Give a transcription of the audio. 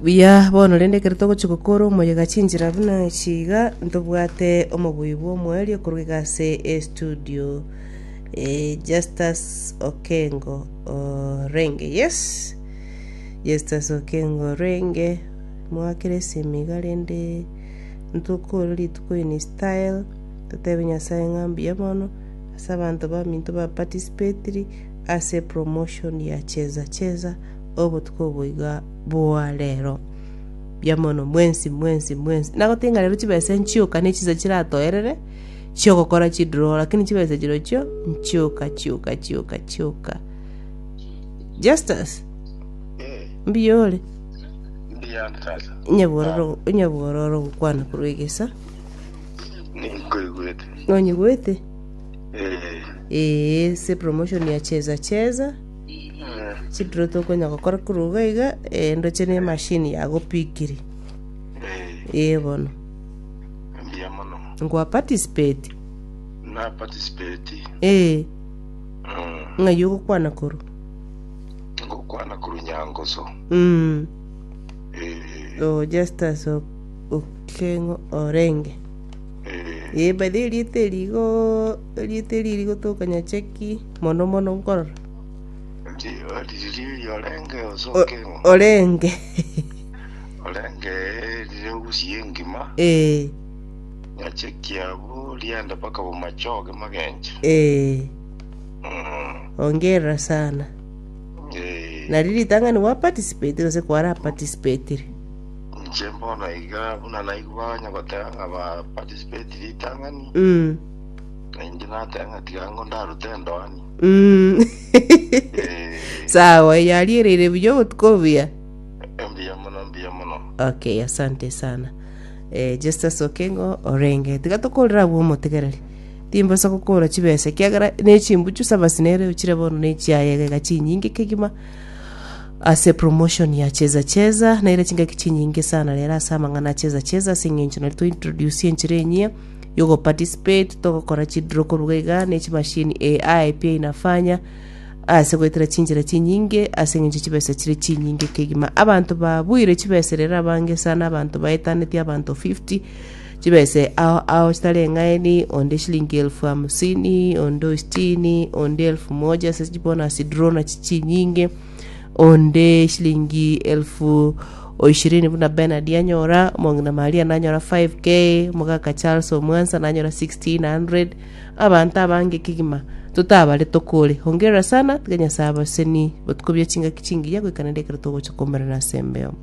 Buya bono rende ekero togochia gokora omoyega chinchera buna ichi iga, ntobwate omobui bw'omoerio korwa iga ase estudio eh, Justus Okengo Orenge. Yes, Justus Okengo Orenge, mwakera esimi iga rende ntokore rituko in style, totebe Nyasae ng'a mbuya bono ase abanto baminto ba participatiri ase promotion ya Cheza Cheza. obotuko obo iga boa rero, mbuya mono mwensi, mwensi, mwensi. Nagotebi ng'a rero chibesa nchioka ne chinsa chiratoerere chi'ogokora chidraw, lakini chibesa chirochio nchioka, chioka, chioka, chioka. Justus, mbuya ore? Mbuya sasa. Onyabororo, onyabororo ogokwana korwa egesa. Ninkoigwete. Nonyigwete? Eh. Ee, se promotion ya cheza cheza. Chidiro tokonya gokora korwa iga iga, eh, ndoche ne machine yagopikiri. Eh, Eh bono. mbuya mono. Ngwa participate. Na participate. Eh, Mm. ng'ai ogokwana korwa. Ngokwana korwa Nyangoso. Mm. Eh, Oh, Justus O- Okeng'o Orenge. eh. Eh, by the way, erieta erigo, erieta eri rigo tokanya cheki. mono mono nkorora orenge ee ee ongerera sana nario ritang'ani gwa participate gose kwara participatire Inche mbono iga buna naigwa onye goteba ng'a ba participate ritang'ani mm Na inche nateba ng'a tiga ango ndarute endoani. Mm. Eh, sawa yariereire buya obotuko obuya embuya mono embuya mono. okay asante sana eh, justus okengo orenge tiga tokorera abwo omotegereri timbosa gokora chibesa ekiagera nechimbuchu sabasi nere ochire bono nechiayegega chinyinge kegima ase promotion ya cheza cheza naire chingaki chinyinge sana rero ase amang'ana a cheza cheza ase eng'encho nari tointroduce enchera enyia y'ogoparticipate togokora chidiro korwa iga ne chimashini AI pi inafanya ase goetera chinchera chinyinge ase engencho chibesa chire chinyinge kegima abanto babuire chibesa rero abange sana abanto baetaneti abanto 50 chibesa ao ao chitari eng'aini onde shilingi elfu hamsini onde ositini onde elfu moja ase chibonus drone chinyinge onde eshilingi elfu oishirini buna Bernard anyora, omong'ina Maria nanyora 5k, omogaka Charles omwansa nanyora 1600, abanto abange kegima totabare tokore. Hongera sana, tiga Nyasae abaseni batukobie chingaki chingiya goika naende ekero togocha koumerana asembeo.